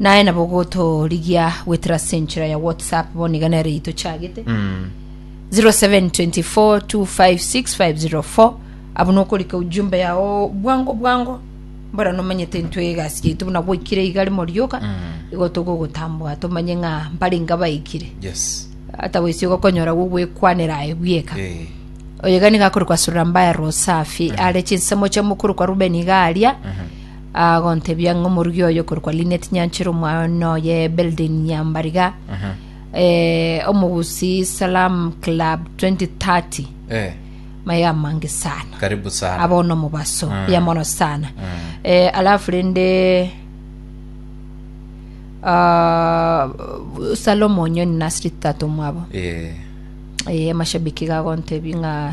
naye nabo gotorigia gwetera ase enchera ya whatsapp bono iga nere eye tochagete Mm. 0724256504 abo nokorika ujumbe yao bwango bwango mbora nomanyete intwe egasi yaitu buna gwaikire iga rimo rioka Mm. igo togogotambua tomanye ng'a mbare inga baikire Yes. ata goisi ogokonyora gogwekwanera aye bwieka Eh. oyo iga niga akorokwa sura mbaya rosafi are chinsemo chia mokuru kwa rubeni iga aria Agontebia ng'a omorugi oye okorokwa Lynette Nyanchera omwana oye Beldin Nyambariga eh, omogusi Salam Club 2030 Eh, maya amange sana karibu sana abona omobaso Mm. ya mono sana eh, alafu rende ah, salomo onyoni nasiri tata omwabo Eh, eh, amashabiki gagontebi ng'a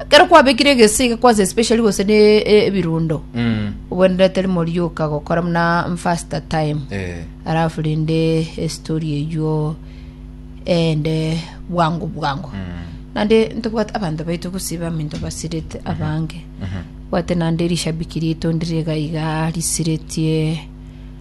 ekero kwabekire egesiga kwanza especially gose ne e- ebirundo Mm. obwenerete rimo rioka gokora muna mfaster time Eh. alafu rinde estori eywo ende bwango bwango Mm. nande ntobwate abanto baito gosiba aminto basirete abange bwate nande rishabiki rito ndire gaiga risiretie